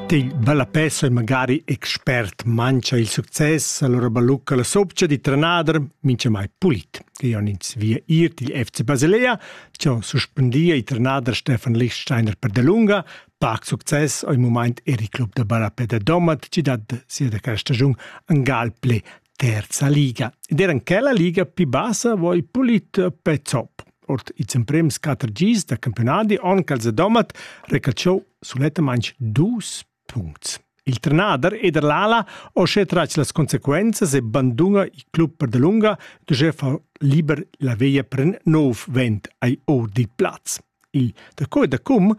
Til ballapè sei magari expert mancha il success, allura ballucca la sopcha di trenader minchamai pulit. Io han ins via ir til FC Basilea, cho suspendia il trenader Stefan Lichtsteiner per delunga, pac success o il mumaint er il club da ballapè da Domat, chi dat sia da questa stagiun angal ple terza liga. Ed era in quella liga più bassa voi pulit pezop. Ort ils emprems quatter gis da campionati on cal Domat recacciò sulettamente dus punti. Il trenader Eder Lala ho sche trac las conseguenzas e banduna il club per de lunga, dove fa liber la veglia pren nov vent ai ordit plaz. Il daco e dacum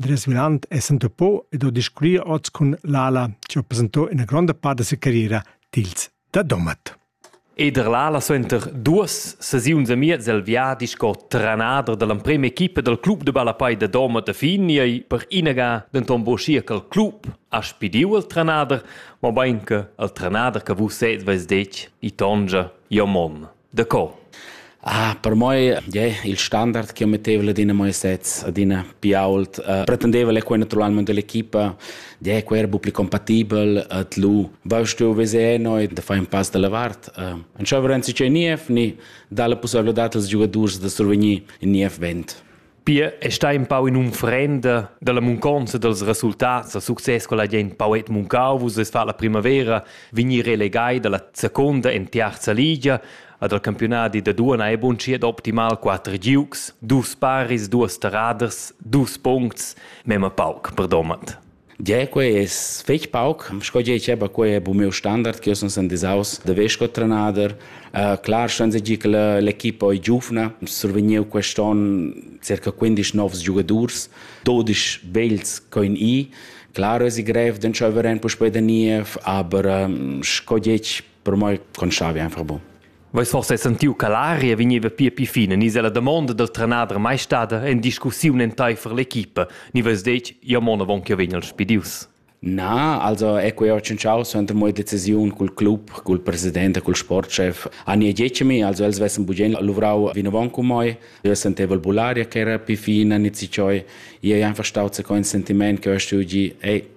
Andreas Viland è s'entupò ed ho discurrì oz cun l'Ala chi ho presentò üna gronda part da sia carriera tils da Domat. Ed er l'Ala suenter duos sesiuns a miez el viadi sco trenader da l'emprema equipa dal club de ballapei da Domat a fin ei per inaga denton buschia che il club ha spidiu il trenader, mobein che il trenader che vus sez veis detg, i tongia, jo mon. Da co? Ah, per moi yeah, il standard che metteva adina moi sets, adina più ault, uh, pretendeva le quei naturalmente dell'equipa, yeah, quei era più compatibel ad lu. Vast tu vese noi da fare un pass dalla vart. Uh, non c'è varenzi c'è Niev, ni dà la possibilità als giocatori da survenir in Niev vent. Pia è stà empau in'unfrenda dalla munconza dals resultats da success con la gent poet muncau vus es fa la primavera vegnir relegai dalla seconda en terza ligia ad al campionadi da duana e bunschiet optimal quatter giugs, dus paris, duas terraders, dus puncts, mema pauc, perdomat. Gie, quei es fetg pauc, sco gie diceva, quei è bu miu standard che io sun sen disaus da vess sco trenader. Uh, clar ston segir che l'equipa è giuvna, survegniu quest onn circa 15 novs giugadurs, 12 vegls coin i. Clar es i grev d'entscheiver en puspei da niev, aber um, sco detg, per moi conschavi einfach bu. Veis forsa sentiu che l'aria vegneva pia pli fina ni se la damonda dal trenader mai stada en discussiun enteifer l'equipa ni veis detg ja mon avon che vegn el spidius? Na, also è quei ho tschintschau suenter mo decisiun cul club, cul president e cul sportchef. Ani e Giecemi, also els vessen bugen luvrau vinavon cu moi. Io sentevo il bularia che era più fina, ni ci cioi. Io ei einfach stau se con sentiment che ho stugi, ei,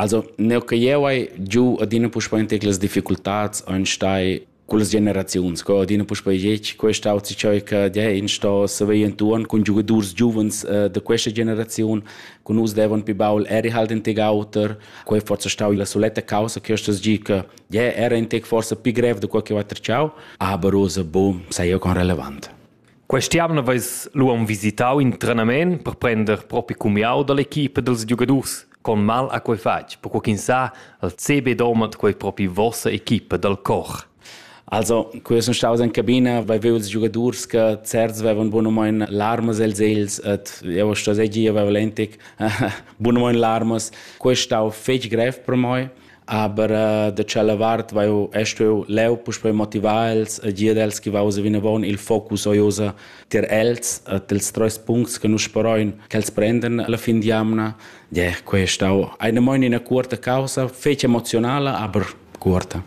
Also, neu che jeu hai giu adina puspei in tec las difficultads ein stai cullas generaziuns, co adina puspei getg, questa auzi cheu che ja in sto saver entuorn cun giugadurs giuvens uh, da questa generaziun, con nus devan pi baul eri halt in tec auter, quei forse stau la soletta causa che stas gi che ja era in tec forse pi grev da quel che va treciau, aber rosa boom, sei eu con relevant. Quest'jamna veis lu aunc visitau in trenament per prender propi cumiau dall'equipa dals giugadurs con mal ha quei fatg, perquei ch'ins sa, el CB domat quei propi vossa equipa dal cor. Also, quei sun staus in cabina, vai veu ils giugadurs che certs vevan bunamein larmas els els et eu sto seigi avevo lentic bunamein larmas. Quei stau fetg grev per moi. aber uh, da tschella vart vai eu est eu leu puspei motivar els e dir els che vausa vinavon il focus oiosa ter els e dels treis puncts che nus speroin che els prenden alla fin di amna yeah, questa eine moine una curta causa fece emozionale aber curta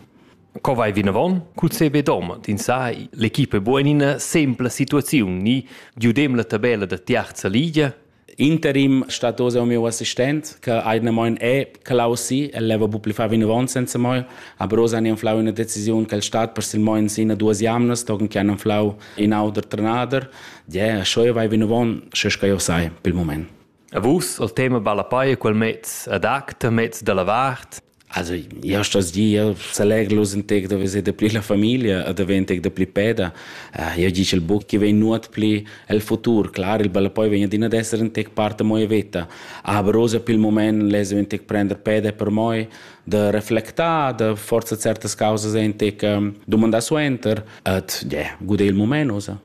Co vai vinavon? Cu sebe dom, din sa, l'equipe buenina sempla situaziun ni giudem la tabella da tiarza ligia? interim stat oz il mio assistent che eine moin è clausi el leva bu pli fa vinavon senza moi aber oz han inflau una decisione che il stat per sil moin sina duas jamnas togen che han inflau in auter trenader ja schoi vai vinavon sche che io sai pel moment A vus al tema balla paia quel mez ad acta mez dalla vart Also, io sto dir, selegellus in tec da veser de pli la familia e davent tec da pli peda. Uh, io dice il buc che vegn nuot pli el futur. Clar, il balla poi vegn adina ad essere in tec parte moi veta. Abrosa per il moment lese in tec prender peda per moi, de reflectar, de forza certas causas in tec um, domandar suenter, et yeah, gude il moment, osa.